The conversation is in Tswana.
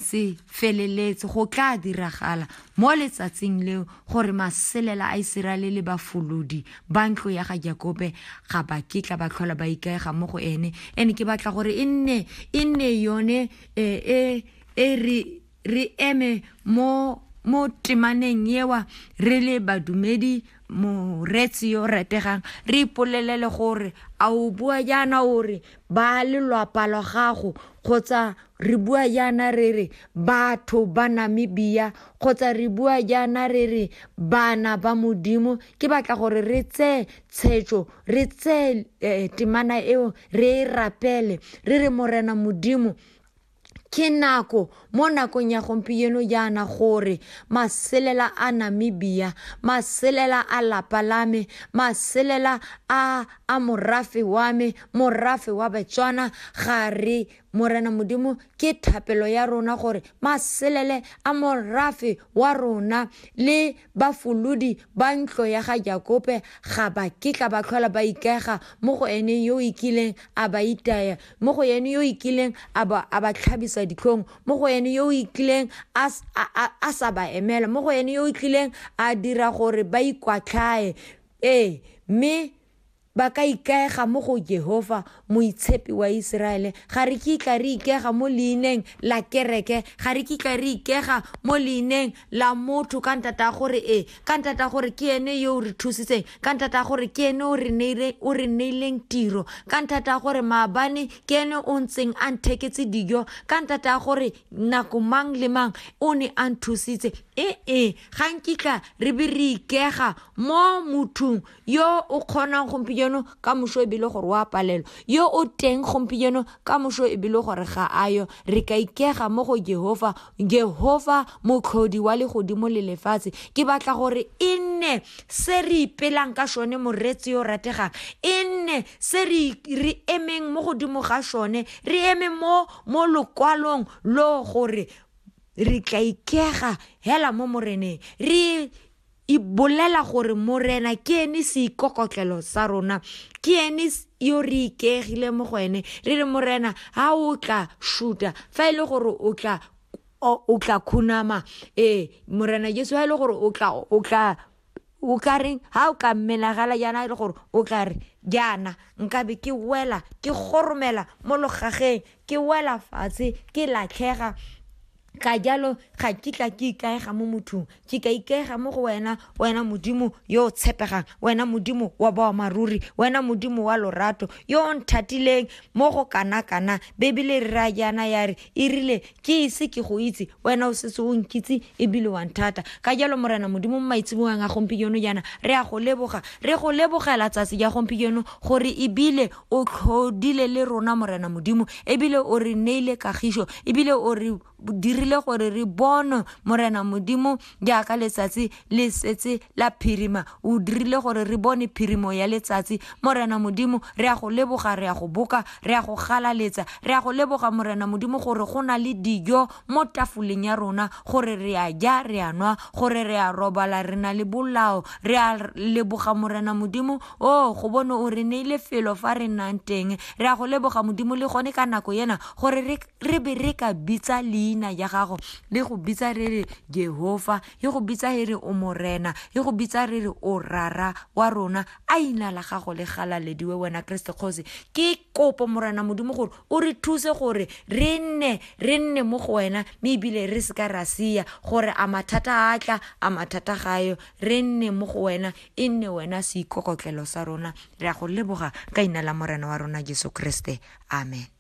se feleletse go tla diragala mo letsatsing leo gore maselela a iseraele le bafolodi ba ntlo ya ga jakobe ga ba kitla ba tlhola ba ikaega mo go ene and ke batla gore e nne e nne yone e e, e re re eme mo mo temaneng ewa re le badumedi moreetsi yo rategang re ipolelele gore a o bua jaana o re ba lelwapa lwa gago kgotsa re bua jaana re re batho ba namibia kgotsa re bua jaana re re bana ba modimo ke batla gore re tseye tshetso re tseye eh, temana eo re e rapele re re morena modimo ke nako mo nakong ya gompieno jaana gore maselela a namibia maselela a lapa la me maselela a a morafe wa me morafe wa betswana ga re morena modimo ke thapelo ya rona gore maselele a morafe wa rona le Bafolodi ba ntlo ya ga Jakope ga ba kitla ba tlhola ba ikaega mo go ene yo o ikileng a ba itaya, mo go ene yo o ikileng a ba, a ba tlhabisa ditlhong, mo go ene yo o ikileng a, a, a, a sa ba emela, mo go ene yo o ikileng a dira gore ba ikwatlhae. Ee, mme Ba ka ikaega mo go Jehofa, Moitshepi wa Iseraele. Ga re kitla re ikega mo leineng la kereke, ga re kitla re ikega mo leineng la motho, ka nthata gore ee, ka nthata gore ke ene yo o re thusitseng, ka nthata gore ke ene o re neileng, o re neileng tiro, ka nthata gore maabane ke ene o ntseng a ntheketse dijo, ka nthata gore nako mang le mang o ne a nthusitse. Ee, ga nkitla re be re ikega mo mothong yo o kgonang gompieno ka moso ebile gore o a palelwa yo o teng gompieno ka moso ebile gore ga a yo re ka ikega mo go jehova jehova motlhodi wa legodimo le lefatshe ke batla gore e nne se re ipelang ka sone moreetsi yo rategang e nne se re emeng mo godimo ga sone re eme mo mo lokwalong lo gore re tla ikega hela mo moreneng re e bolela gore morena ke ene seikokotlelo sa rona ke ene yo re ikegile mo go ene re re morena ga o tla shuta fa e le gore o tla o tla khunama ee morena jesu ga e le gore o tla o tla o ka reng ga o ka menagala jaana e le gore o tla re jaana nkabe ke wela ke goromela mo logageng ke wela fatshe ke latlhega ka jalo ga kitla ke ikaega mo mothong ke ka ikaega mo go wena wena modimo yo o tshepegang wena modimo wa boamaruri wena modimo wa lorato yo o nthatileng mo go kana-kana bebele re ra jaana ya re e rile ke ise ke go itse wena o setse o nkitse ebile wa nthata ka jalo morena modimo mo maitsebogang a gompieno jaana re a go leboga re go lebogela tsatsi ja gompieno gore ebile O tlhodile le rona, Morena Modimo, ebile o re neile kagišo, ebile o re dirile gore re bonwe, Morena Modimo, jaaka letsatsi le setse la phirima. O dirile gore re bone phirimo ya letsatsi, Morena Modimo, re ya go leboga, re ya go boka, re ya go galaletsa, re ya go leboga, Morena Modimo, gore go na le dijo mo tafoleng ya rona, gore re a ja, re a nwa, gore re a robala, re na le bolao, re a leboga, Morena Modimo, o go bone o re neile felo fa re nnang teng re a go leboga modimo le gone ka nako ena gore re be re ka bitsa leina ya gago le go bitsa re re jehova e go bitsa e re o morena e go bitsa re re o rara wa rona a ina la gago le galalediwe wena keresete kgosi ke kopo morena modimo gore o re thuse gore re nne re nne mo go wena mme ebile re se ka ra sia gore a mathata a tla a mathata gayo re nne mo go wena E nne wena seikokotlelo sa rona, re a go leboga ka Leina la Morena wa rona Jesu Kriste. Amen.